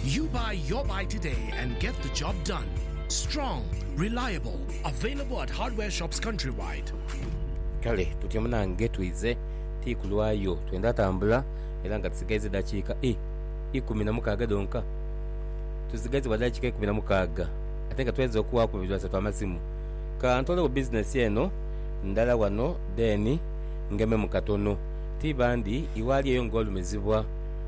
You buy your buy today and get the job done. Strong, reliable, available at hardware shops countrywide. Kale tutyo munange twidhe ti kulwayo twendha tambula era nga tusigaiza edhakiika i ikumi na mukaaga dhonka. Tusigaiza bwa dhakiika ikumi na mukaaga ate nga twedha okuwaaku babiri basatu amasimu. Ka ntoolegho bizinesi eno ndala wano then ngememu katono. Ti bandi iwaali eyo ng'olumizibwa.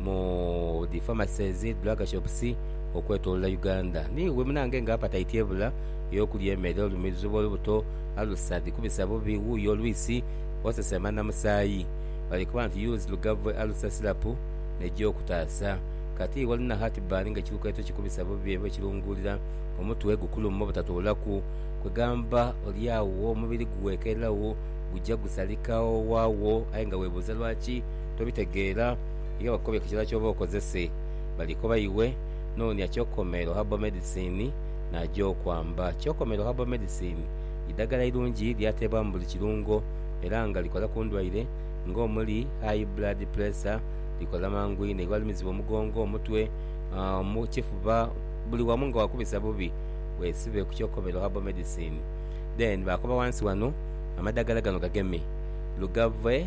mu dhi pharmacies, drug shops okwetolola Uganda. Niiwe munange nga appetite ebula ey'okulya emere, olumirizibwa olubuto, alusa dhikubisa bubi, wuuyo olwisi osesema na musaayi. Bali kuba nti use Lugave Alusa Syrup neija okutaasa. Kati iwe olina heartburn nga ekilukeeto kikubisa bubi era okilunguulira, omutwe gukuluma obutatoolaku, kwegamba oli agho omubiri gughekeeragho, guja gusalika owaagho aye nga webuuza lwaki? tobitegeera, iwe bakobye ku kira ky'oba okozese. Balikoba iwe, Noonia Kyokomero Herbal Medicine n'aja okwamba. Kyokomero Herbal Medicine idhaggala irungi lyateebwa mu buli kirungo era nga likola ku ndwaire ng'omuli, High Blood Pressure, likola mangu inho iwe alumizibwa omugongo, omutwe, ekifuba, buli wamu nga wakubisa bubi, weesibe ku Kyokomero Herbal Medicine. Then baakoba wansi wano, Amadhaggala gano gageme, lugave.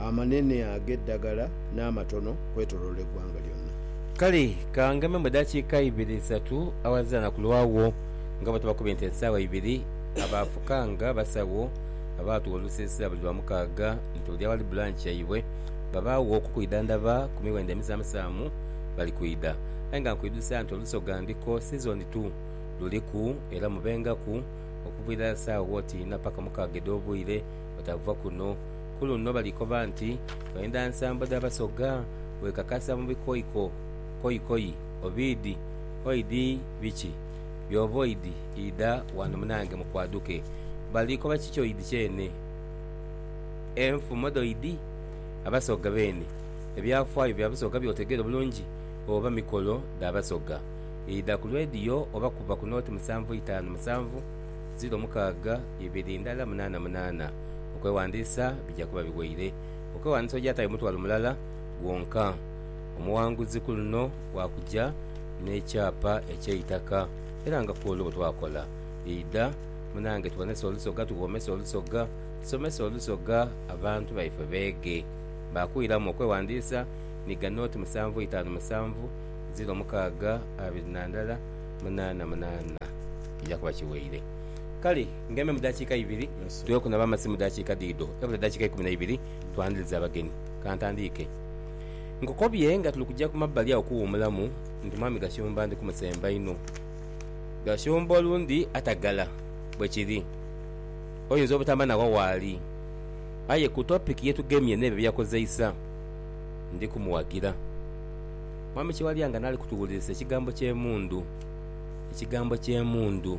amanene ag'eddagala n'amatono kwetoloola eggwanga lyonna. Kale ka ngememu eddakiika ibiri isatu awazira na kulwawo nga bwe tuba ku bintu esaawa ibiri. Abaafukanga abasawo abaatuwa olusiisira buli Lwamukaaga nti oli awali bulanki yaibwe babaagho okukwidhandhaba ku miwendo emisaamusaamu bali kwidha. Aye nga nkwidhusa nti Olusoga ndiko sizoni tu luliku era mubengaku okuva irala saawa oti inha paka mukaaga edh'obwire butaava kuno. Ku luno bali koba nti, Twendha nsambo dha Basoga, wekakasa mu bikoiko, koikoi, obiidhi, oidhi biki? Byova oidhi, idha ghano munange mukwaduke. Bali koba kiki oidhi kyene? Enfumo dhoidhi? Abasoga beene, ebyafaayo bya Busoga by'otegeera obulungi oba mikolo dha Basoga? Idha ku lwediyo oba kuba ku nooti musanvu itaanu musanvu, ziro mukaaga, ibiri ndala munaana munaana. Okwewandiisa bija kuba biweire. Okwewandiisa ogyatayo mutwalo mulala gwonka. Omuwanguzi ku luno wakuja n'ekyapa eky'eitaka era nga kwolwo bwe twakola. Idha munange tuwonese olusoga tughomese olusoga, tusomese olusoga abantu baife beege. Baakuiramu okwewandiisa ni ga nooti musanvu itaanu musanvu ziro mukaaga abiri na ndala munaana munaana. Kija kuba kiweire. Kale. Ng'embe mu daakiika ibiri, tughe kunaba amazzi mu daakiika dhidho. Ebula edaakiika ikumi na ibiri twandhirize abagenyi. Ka ntandiike. Nkukobye nga tuli kuja ku mabbali agho kuwuumulamu nti Mwami Gashumba ndi kumusemba inho. Gashumba olundi atagala. Bwe kiri. Oyinza obutamba nawa waali. Aye ku topiki ye tugemye n'ebyo bye yakozeisa, ndi kumuwagira. Mwami Kiwalya nga n'ali kutuwulirisa ekigambo ky'emundu. Ekigambo ky'emundu.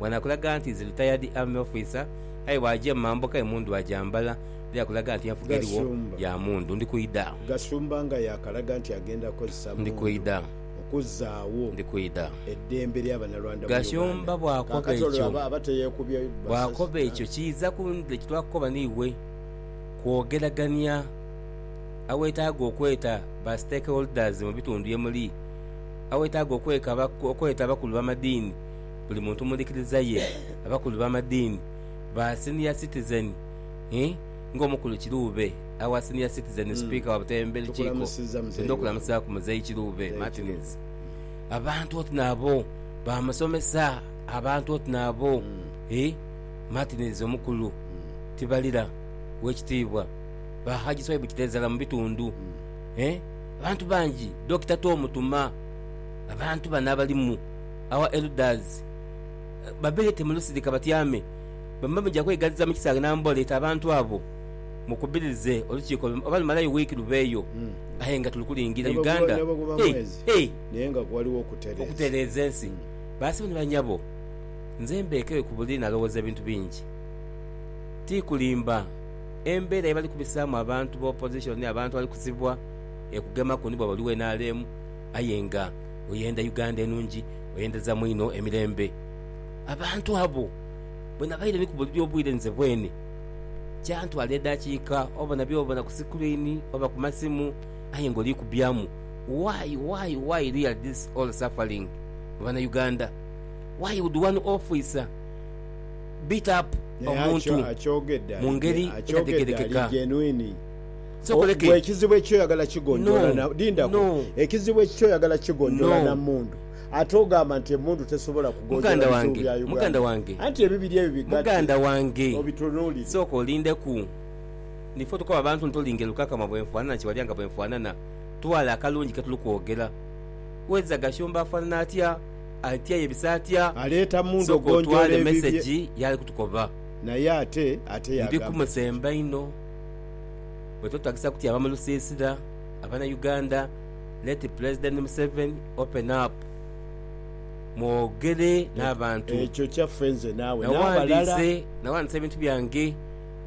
Ghano akulaga nti is retired army officer aye bwaja mu mambuka emundu agyambala era akulaga nti enfuga erigho ya mundu. Ndi kwidha. Gashumba nga yakalaga nti agenda kozesa mundu okuzaagho eddembe lya Bannalwanda mu Uganda. Kaakati olwo aba aba teyekubye masasi? buli muntu mu ndhikiriza ye, abakulu b'amadiini, ba Senior Citizen ii, ng'omukulu Kiruube awa Senior Citizen Sipiika wa Buteebe Lukiiko, twidha okulamusaaku Muzeeyi Kiruube Martins. Abantu oti nabo ba musomesa, abantu oti nabo ii, Martins omukulu tibalira, Oweekitiibwa ba Hajji Swaibu Kiteezala mu bitundu ii, abantu bangi, Dokita Tom Tuma, abantu bano abalimu. Our elders babeete mu lusirika batyame, bamba muja kweigaliza mu kisaaghe n'ambola eti abantu abo mukubirize olukiiko lume oba lumalayo wiiki lubeeyo aye nga tuli kulingira Uganda okutereeza ensi. Basebo ni banyabo, nze mbeekeyo ku buli nalowooza ebintu bingi. Ti kulimba, embeera ye bali kubisaamu abantu ba opposition, abantu abali kusibwa ekugemaku ni bwaba oli wa nrm, Aye nga oyenda Uganda enungi, oyenderezamu inho emirembe. Abantu abo bwe nabaire ni kubulira obwire nze bwene, kyantwala edaakiika oba na by'obona ku sikuriini oba ku masimu aye nga oliikubyamu, Why, why, why really this all suffering mu Banauganda? Why would one officer beat up Naye omuntu akyogedde mu ngeri ali etadhegerekeka? genuine. Ggwe ekizibu eky'oyagala kigonjoola na. Lindako. Ekizibu eky'oyagala kigonjoola na mmundu, ate ogamba nti emmundu tesobola kugonjoola bizibu bya Uganda. Anti ebibiri ebyo bigatte obitunuulire. Sooka olindeku. Ni ffe otukoba abantu nti olinga elukakama bwenfaanana kiwalya nga bwenfaanana. Twala akalungi ketuli kwogera. Weza Gashumba afaanana atya? Atyayo ebiso atya? Sooka otwale mesegi yaali kutukoba. Ndi ku musemba inho. Wetwetagisa kutyama mu lusiisira abana Uganda let Pulezidenti Museveni open up mwogere n'abantu. Ekyo kyaffe nze naawe n'abalala. Nawandiise ebintu byange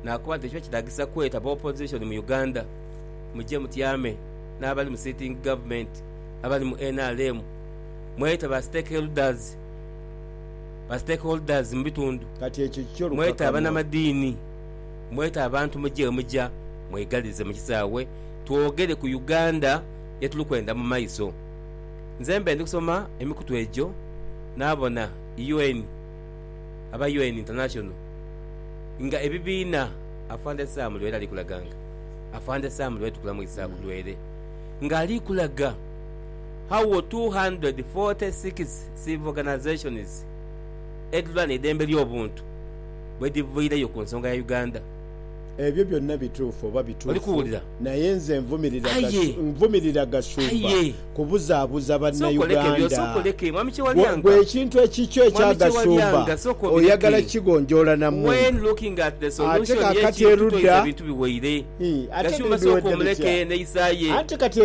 nakoba nti ekiba kitagisa kweta ba opozishoni mu Uganda muje mutyame n'abali mu sitingi gavumenti abali mu nrm mwete ba stakeholders mu bitundu mwete abanamadiini. Mwete abantu muje wemuja mwegalirize mu kisaawe twogere ku Uganda ye tuli kwenda mu maiso. Nze mbe ndi kusoma emikutu egyo naabona UN aba UN International nga ebibiina Afande Sam Lwere ali kulaganga. Afande Sam Lwere tukulamu Isaac Lwere nga ali kulaga how 246 civil organisations edhilwanira eidembe ly'obuntu. bwedhiviireyo ku nsonga ya Uganda. Ebyo byonna bituufu oba bituufu naye nze nvumirira Gashumba kubuzaabuza Bannauganda. Ggwe ekintu ekikyo ekya Gashumba oyagala kukigonjoola na muntu ate kaakati erudda? Ate ebintu biweire? Ate ebintu biwedde bitya? Anti kati.